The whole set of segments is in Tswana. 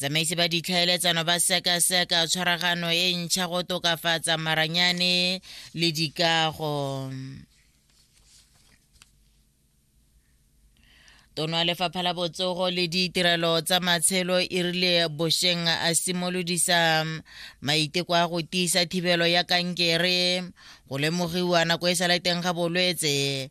Tsamaisi ba ditlhaeletsano ba sekaseka tshwaragano e ntšha go tokafatsa maranyane le dikago. tono ya lefapha la botsogo le ditirelo tsa matshelo e rile bosheng a simolodisa maiteko a go tiisa thibelo ya kankere go lemogiwa nako e sa le teng ga bolwetse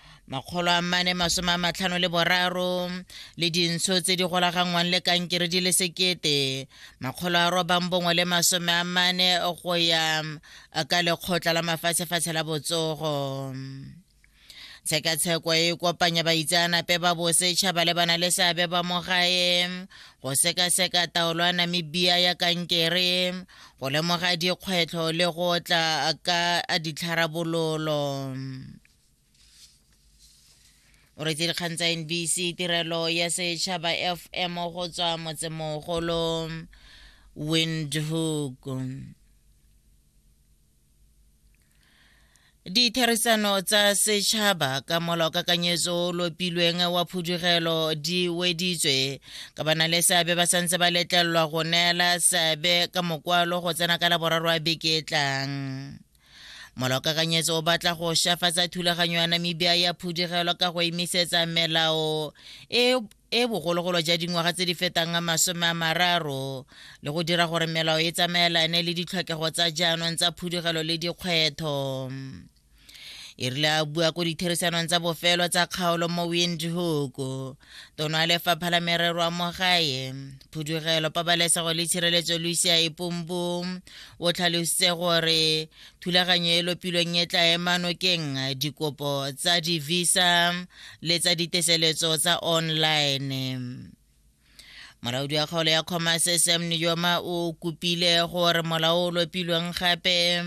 makgolo a mane masome a matlhano le boraro le dintsho tse di golaganngwang le kankere di le sekete makgolo a robang bongwe le masome a mane go ya ka lekgotla la mafatshefatshe la botsogo tshekatsheko e kopanya baitseanape ba bosetšha ba lebana le seabe ba mo gae go sekaseka taolo ya namibia ya kankere go lemoga dikgwetlho le go tla ka ditlharabololo o retse dikgang tsa nbc tirelo ya setšhaba fm go tswa motsemogolo windhoek ditherisano tsa setšhaba ka molaokakanyetso o lopilweng wa phudugelo di weditswe ka bana le seabe ba santse ba letlelelwa go neela seabe ka mokwalo go tsena ka laboraro a beke e tlang molokakanyetso o batla go shafatsa thulaganyo ya namibia ya phudigelo ka go emisetsa melao e e bogologolo ja dingwaga tse di fetang masome a mararo le go dira gore melao e tsamaelane le ditlhokego tsa jaanong tsa phudigelo le dikgwetho e rile a bua ko ditherisanong tsa bofelo tsa kgaolo mo windhoek tono ya lefapha la merero a mogae phudugelo pabalesego le tshireletso lucia epompo o tlhalositse gore thulaganyo e lopilweng e tla ema nokeng dikopo tsa divisa le tsa diteseletso tsa online molaodi wa kgaolo ya commerce sam nijoma o kopile gore molao o lopilweng gape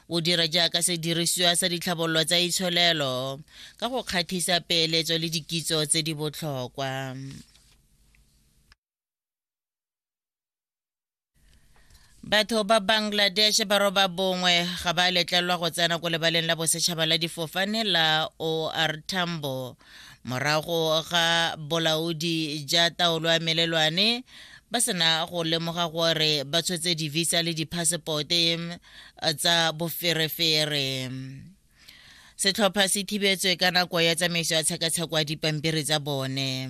o dira jaaka sedirisiwa sa ditlhabololo tsa itsholelo ka go kgathisa peeletso le dikitso tse di botlhokwa batho ba bangladesh ba roba bongwe ga ba letlelwa go tsena ko lebaleng la bosetšhaba la difofane la or tambo morago ga bolaodi ja taolo ya melelwane ba sena go lemoga gore ba tshotse divisa le diphasepote tsa boferefere setlhopha se thibetswe ka nako ya tsamaiso ya tshekatsheko ya dipampiri tsa bone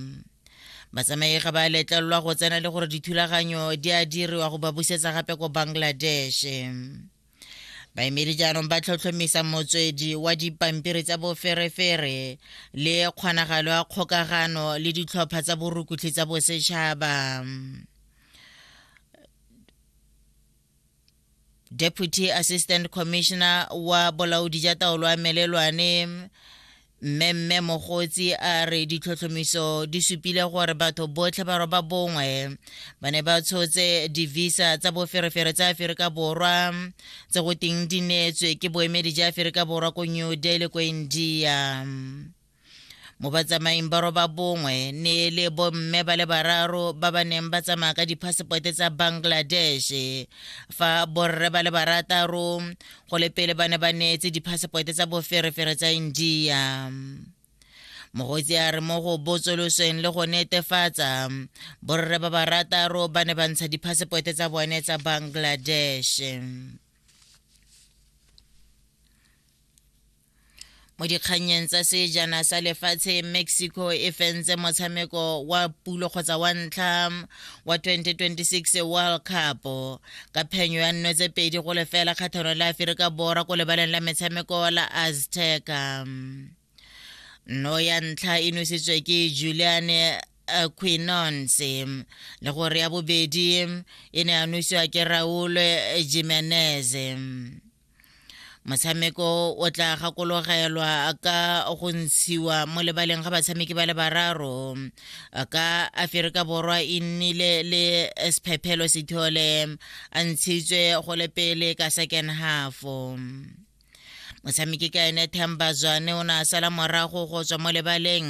batsamaega ba letlelelwa go tsena le gore dithulaganyo di a diriwa go ba busetsa gape ko bangladesh baemedi jaanong ba tlhotlhomisa motswedi wa dipampiri tsa boferefere le kgonagalo ya kgokagano le ditlhopha tsa borukutlhi tsa bosetšhaba deputy assistant commissioner wa bolaodi ja taolo a melelwane mmemme mogotsi a re ditlhotlhomiso di supile gore batho botlhe ba roba bongwe ba ne ba tshotse divisa tsa boferefere tsa aferika borwa tse go teng di neetswe ke boemedi ja aferika borwa ko new delhi ko india mo batsamaing ba roba bongwe ne e le bomme ba le bararo ba ba neng ba tsamaya ka diphasepote tsa bangladesh fa borre ba le barataro go le pele ba ne ba neetse diphasepote tsa boferefere tsa india mogotsi a re mo go botsolosweng le go netefatsa borre ba barataro ba ne ba ntsha diphasepote tsa bone tsa bangladesh mo dikgannyeng tsa sejana sa lefatshe mexico e fentse motshameko wa pulo kgotsa wa ntlha wa 2026 world cup ka phenyo ya nno tse pedi go lefela kgathano la aferika borwa ko lebaleng la metshameko la azteca nno ya ntlha e nositswe ke juliane eh, quinonse le gore ya bobedi e ne ya nosiwa ke raul jimenez motshameko o tla gakologelwa ka go ntshiwa mo lebaleng ga batshameki ba le bararo ka aferika borwa e nnile le sephephelo sethole a ntshitswe go le pele ka second half motshameki ka ene themba zwane o ne a sala morago go tswa mo lebaleng